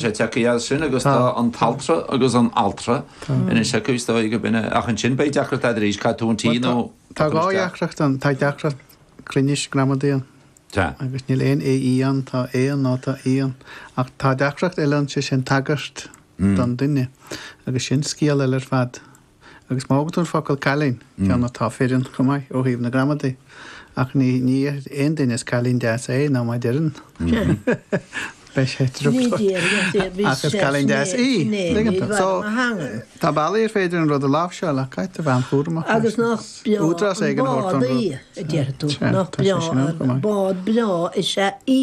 sé tiocfaidh as sin agus tá an t-altra agus an altra ina thiocfaidh is dóigh go binne ach ansin beidh deacracht a'd arís cad tú an tí nó Tá dhá dheacracht ann, tá deacracht cruinnis gramadaí ann Tá. agus níl aon é í ann, tá é ann nó tá í ann ach tá deacracht eile ann sé sin tagairt don duine agus sin scéal eile ar fad. Agus má thógann tú an focal cailín, ceann atá fireann chomh maith ó thaobh na gramadaí, ach ní dhéarfaidh aon duine is cailín deas é nó má deireann, beidh sé truamhéalach. Ach is cailín deas í. So, tá bealaí ar féidir an rud a láimhseáil ach caithfidh tú a bheith an-chúramach leis. Agus nach breá an bád í, a deir tú. Nach breá an bád breá is ea í.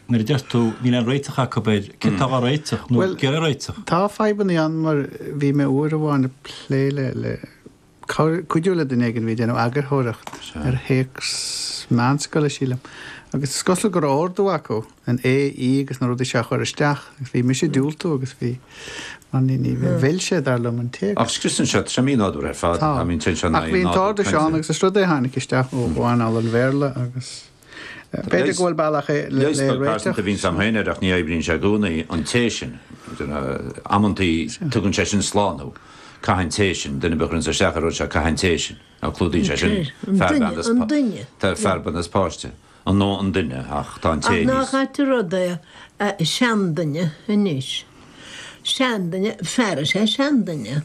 Nuair a deir tú, níl aon réiteach acu air, céard atá á réiteach, nó céard é an réiteach? Tá fadhbannaí ann mar bhí mé uair amháin ag plé le, le, cabhair, cuidiú le duine éigin a bhí ag déanamh eagarthóireacht ar théacs meánscoile sílim agus is cosúil go raibh ordú acu an é í agus na rudaí seo a chur isteach agus bhí mise ag diúltú agus bhí, mar ní, ní, mhill sé dar liom an téacs. Ach scriosann sé tremí nádúr ar fad, I mean téann sé in aghaidh nádúr cainte. Ach bhí an t-ordú seo ann agus is rud é a tháinig isteach ó anáil an Bhéarla agus. B'fhéidir go bhfuil bealach le réiteach. Leigheas beag pearsanta a bhíonns a'm féin air ach ní oibríonn sé i gcónaí an té sin. Amantaí, tugann sé sin slán thú. Caithfidh an té sin. Duine ar bith a chuireanns isteach ar an rud seo, caithfidh an té sin. Ná clúdaíonn sé sin fear, bean is. An duine. Tá fear, bean is páiste. An nó an duine ach tá an té níos. Ach nach ait an rud é seanduine anois. Seanduine, fear is ea seanduine.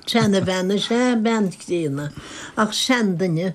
Seanbhean is ea bean críonna. Ach seanduine.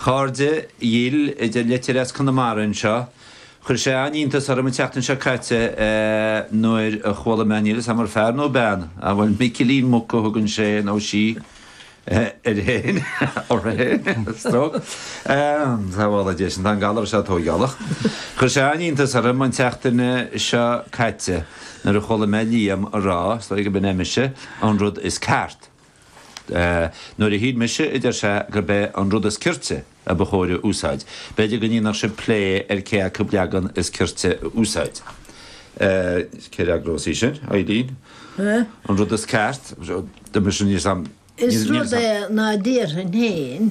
Chairde dhil, a deir litir as Conamara anseo. Chuir sé an-iontas orm an tseachtain seo caite nuair a chuala mé, níl 'fhios a'm ar fear nó bean, a' bhfuil Micilín Muc a thugann sé nó sí air fhéin, uirthi fhéin, stroke, sábhála Dia sinn, tá an galar seo tóigeálach. Chuir sé an-iontas orm an tseachtain seo caite nuair a chuala mé Liam a' rá, is dóigh go b'in é mise, an rud is ceart. Nuair a shíl mise, a deir sé, gurb é an rud is cirte a ba chóir a úsáid, b'fhéidir go ndéanfadh sibh plé ar cé acu leagan is cirte a úsáid. Cé a fhreagrós é sin? Ailín? An rud is ceart? Is rud é ná déarfainn féin.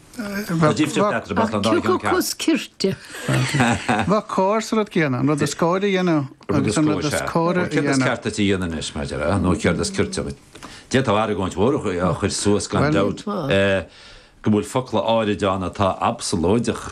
Bheadh cóir sa rud céanna, an rud is cóir a dhéanamh agus an rud is córa a dhéanamh. Céard is ceart duit a dhéanamh anois, mar a déarfá, nó céard is cirte dhuit? D'fhéadfá argóint mhór a chur suas, gan dabht, go bhfuil focla áirid ann atá absalóideach,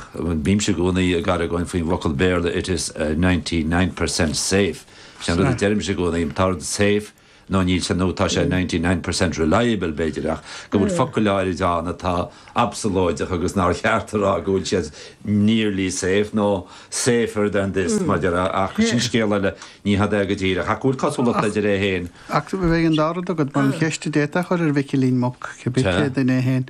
bímse i gcónaí ag argóint faoin bhfocal Béarla 'it is ninety nine percent safe', sin an rud a deirimse i gcónaí, tá rud safe, nó níl sé nó tá sé ninety nine percent reliable, b'fhéidir, ach go bhfuil focail áirid ann atá absalóideach agus nár cheart a rá go bhfuil siad nearly safe nó safer than this, mar déarfá, ach sin scéal eile, ní hada é go díreach, ach go bhfuil cosúlachtaí idir é féin. Ach bheadh an dá rud agat, mar an cheist a d'fhéadfá a chur ar Mhicilín Muc, cibé cé duine é féin,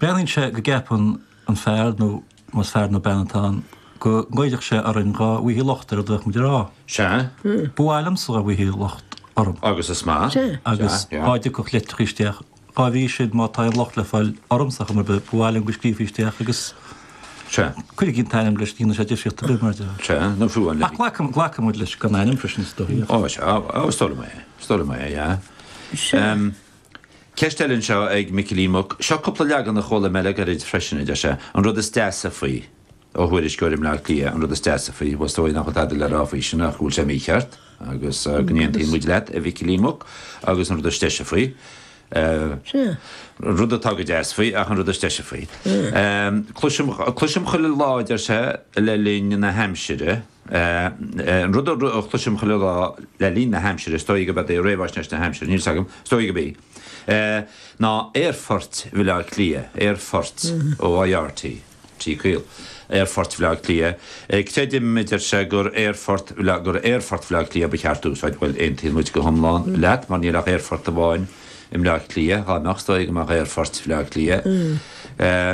Breathnaíonn sé go gceapann an fear, nó más fear nó bean atá ann, go ngoillfeadh sé orainn dhá bhfaighthí locht ar a bhfuil muid a rá. Sea. Ba mhaith liomsa dhá bhfaighthí locht orm. Agus is maith. Sea. Agus dhá dtiocfadh leitreacha isteach, cá bhfaighidh siad má tá aon locht le fáil ormsa ar chuma ar bith, ba mhaith liom go scríofaí isteach agus Sea. Cuirigí an t-ainm leis, ní dhéanann sé difríocht ar bith, mar déarfá. Sea, nó fiú an leithéid. Ach glacann muid leis gan ainm freisin, is dóichí. Ó, sea, is dóigh liom é, is dóigh liom é, yeah. Sea. Ceist eile anseo ag Micilín Muc. Seo cúpla leagan a chuala mé le gairid freisin, a deir sé. An rud is deasa faoi. ó thuairisceoir i mBleá Cliath, an rud is deasa faoi, bhuel is dóigh nach bhfuil tada le rá faoi sin ach go bhfuil sé mícheart agus go n-aontaíonn muid leat, a Mhicilín Mhuc, agus an rud is deise faoi. an rud atá go deas faoi ach an rud is deise faoi. Cloisim chuile lá, a deir sé, le linn na haimsire. An rud a chloisim chuile lá le linn na haimsire, is dóigh gurb é réamhaisnéis na haimsire, níl 's agam, is dóigh gurb í! ná aerfoirt Bhaile Átha Cliath, aerfoirt OIR T, T caol, aerfoirt Bhaile Átha Cliath, creidim, a deir sé, gur aerfort, gur aerfort Bhaile Átha Cliath ba cheart a úsáid. Bhuel, aontaíonn muid go hiomlán leat, mar níl ach aerfort amháin. i mBleá Cliath, dhá mbeadh is dóigh go mbeadh aerfoirt Bhleá Cliath.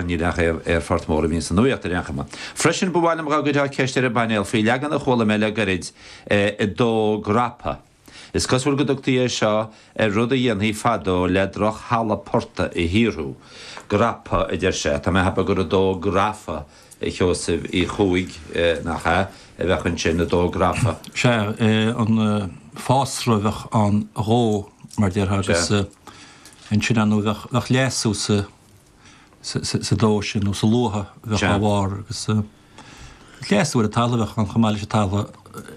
Níl ach aerfort mór a bhíonn sa nuaíocht ar aon chuma. Freisin, ba mhaith liom dhá gcuirfeá ceist ar an bpainéal faoi leagan a chuala mé le gairid dó grapa. Is cosúil go dtugtaí é seo ar rud a dhéantaí fadó le drochthalamh portaigh a shaothrú. Grapa, a deir sé. Tá mé a cheapadh gur dó grafa a Sheosaimh Uí Chuaig, nach ea, a bheadh ansin dó grafa? Sea, an fásra a bheadh ann a dhó, mar déarfá, agus ansin ann nó bheadh leasú sa dó sin, nó sa luaith a bheadh dhá bharr, agus leasú ar an talamh a bheadh ann chomh maith leis an talamh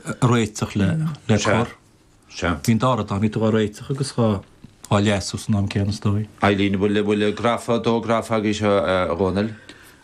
a réiteach le cur. Bhí an dá rud ann, bhí tú dhá réiteach agus dhá leasú san am céanna, is dóigh liom. Bhfuil grafa, dó grafa agaibhse, a Dhónaill?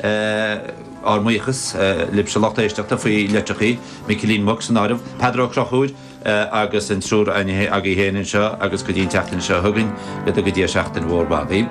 ár mbuíochas libhse a lucht éisteachta faoi leitreachaí, Micilín Muc san áireamh, Peadar Ó Crochúir agus an triúr agaibh féin anseo agus go dtí an tseachtain seo chugainn, go dtuga Dia seachtain mhór mhaith dhaoibh.